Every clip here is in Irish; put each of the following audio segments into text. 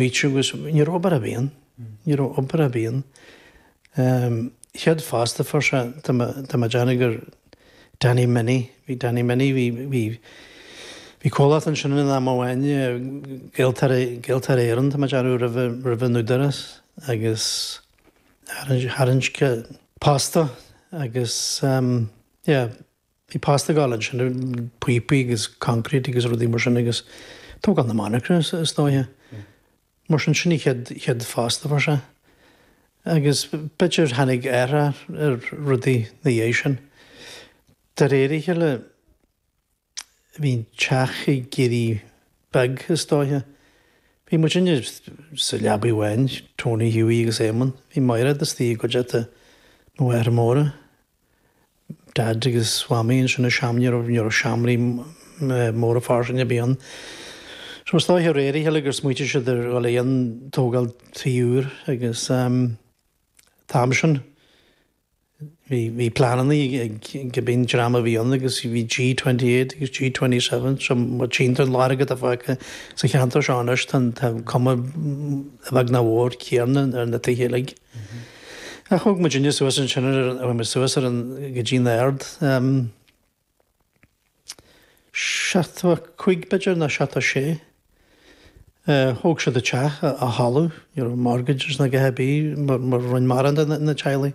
Bhí triú is ní raibh obair ar bith ann. Ní raibh obair ar bith ann. Chéad phosta a fuair sé, tá mé ag déanamh gur Danny Minnie, bhí Danny Minnie, bhí, bhí, bhí comhlacht ansin in am amháin, Gaeltarra, Gaeltarra Éireann, tá mé ag déanamh roimh, roimh an Údarás agus tharraing, tharraing sé posta agus, yeah, Bhí postaí ag gabháil ansin, píopaí agus concrete agus rudaí mar sin agus tógáil na monarcha is dóigh. Mar sin sin an chéad phosta a fuair sé. Agus b'fhéidir tháinig athrach ar rudaí ina dhiaidh sin. De réir a chéile bhí an teach ag éirí beag is dóigh. Bhí muidinne sa leabaí amháin, Tony, Hughie agus Éamonn. Bhí Máire istigh i gcuideachta mo mháthair móra. Daid agus Mamaí ansin i seomra, ní raibh, ní raibh seomraí móra fairsinge ar bith ann. So is dóiche de réir a chéile gur smaoitigh siad ar dhul chun tógáil teach úr agus ehm, t-am sin, bhí, bhí pleananna ag, ag, cibé dream a bhí ann agus bhí G28 agus G27, so má tchíonn tú a lán acu atá fágtha sa cheantar seo anois tá, tá cuma a bheag nó a mhór céanna ar na tithe uilig. Ach bhog muidinne suas ansin nuair a bhain muid suas ar an, go dtí an Aird, ehm, seachtó a cúig, b'fhéidir, nó seachtó a sé. Eh, thóg siad an teach ó thalamh, you know, mortgages nó cibé, mar, mar a rinne mórán de na, na teaghlaigh.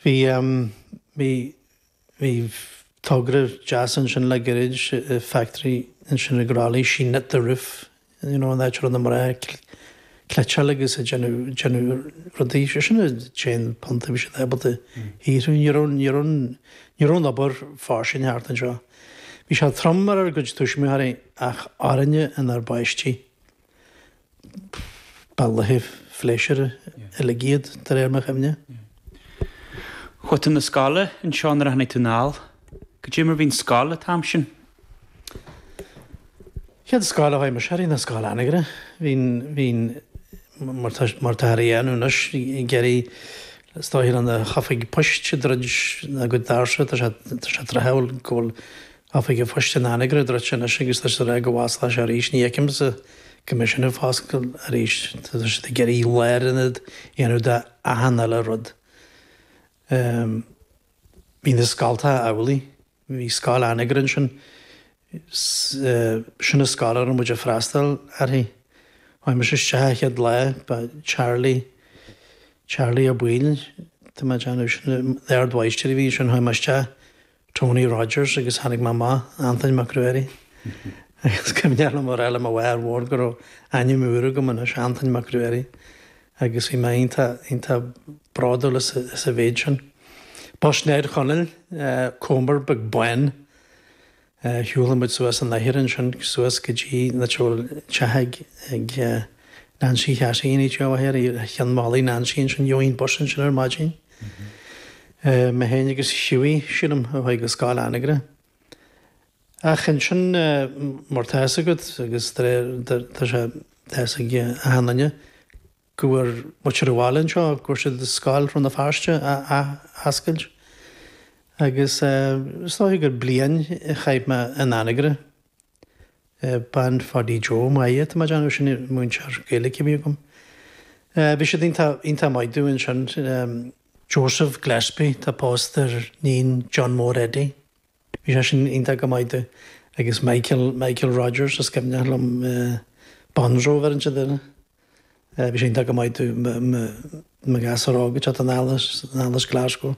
Bhí, ehm, bhí. Bhí togra deas ansin le gairid, factory ansin i gCroithlí, sheen it, the roof, you know, an áit a raibh na mná ag cleiteáil agus ag déanamh rudaí, sé sin an t-aon phunt a bhí siad ábalta a shaothrú. Ní raibh, ní raibh, ní raibh an obair fairsing thart anseo. Bhí sé trom ar ár gcuid tuismitheoirí ach orainne inár bpáistí. Ba laethe pléisiúir uilig iad, de réir mo chuimhne. Chuaigh tú na scoile anseo nuair a tháinig tú anall. Go deimhin bhí an scoil an t-am sin. Chéad scoil a chuaigh mise uirthi ná Scoil Anagaire. Bhínn, bhínn, mar tá, mar táthar ag déanamh anois, ag iarraidh, is dóigh le na hoifigí poist ag druid a gcuid doirse, tá sé, tá sé tráthúil go bhfuil Oifig an Phoist in Anagaire druidte anois agus tá siad ag rá go bhfosclóidh sé arís. Ní fheicimse go mbeidh sin ag foscailt arís. Tá siad ag iarraidh lárionad a dhéanamh de achan eile rud. Bhí na scoltacha amhlaidh. Bhí scoil Anagaire ansin. Sin an scoil a raibh muid ag freastáil uirthi. Tháinig mise isteach an chéad lá, ba Charlie, Charlie Ó Baoill, tá mé ag déanamh, sin an t-ardmháistir a bhí ansin, tháinig mé isteach, Tony Rogers agus tháinig mé amach Antain Mac Ruairí. Agus is cuimhneach liom a rá le mo mháthair mhór go raibh ainm úr agam anois, Antain Mac Ruairí, agus bhí mé iontach, iontach bródúil as, as an mhéid sin. Bus Ned Chonaill, Commer beag bán. Shiúl muid suas an oighear ansin suas go dtí na tithe ag, ag Nancy Chassie, an oíche seo, ar cheann mhalaidh Nancy ansin, gheobhainn bus ansin ar maidin. Mé féin agus Hughie, sílim, a chuaigh go Scoil Anagaire. Ach ansin, mar tá a fhios agat, agus de réir, tá sé, tá a fhios ag achan duine, go bhfuair muintir an bhaile anseo, go bhfuair siad scoil Rann na Feirste a athoscailt. Agus is dóiche gur bliain a chaith mé in Anagaire. Bean Phaidí Joe Maya, tá mé ag déanamh sin, múinteoir Gaeilge a bhí agam. Bhí siad iontach, iontach maith domh ansin. Joseph Gillespie, tá pósta ar níon John Mór Eddie, bhí sé sin iontach go maith domh. Agus Michael, Michael Rogers, is cuimhneach liom Bonzo a bheith ar an te deireadh. Bhí sé iontach go maith domh i mo ghasúr óg ag teacht anall as, anall as Glasgow.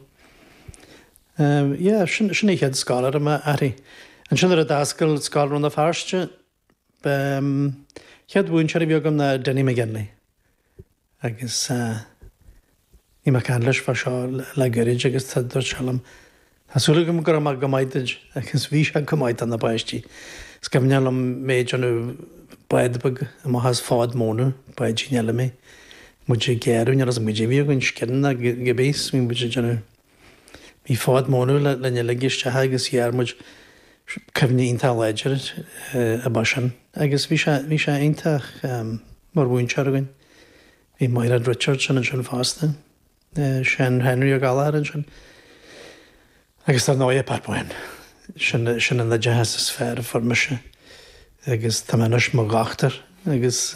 Yeah, sin, sin an chéad scoil a raibh mé uirthi. Ansin nuair a d'fhoscail scoil Rann na Feirste, an chéad mhúinteoir a bhí agam ná Dinny McGinley. Agus Bhí mé ag caint leis fá seo le gairid agus dúirt sé liom, 'Tá súil agam go raibh mé go maith duid,' agus bhí sé go maith do na páistí. Is cuimhneach liom mé ag déanamh bád beag amach as fód móna, báidín eile mé. Muid ag gearradh, níl 'fhios a'm cad é a bhí againn, scian nó cibé a bhí muid ag déanamh. Bhí fód móna linn uilig isteach agus ghearr muid. Cuimhne iontach láidir agam air sin. Agus bhí sé, bhí sé iontach mar mhúinteoir againn. Bhí Maighread Richardson ansin fosta, Seán Henry Ó Gallchóir ansin agus dar ndóigh Pat Boyne. Sin, sin an oideachas is fearr a fuair mise agus tá mé anois i mo dhochtúir agus.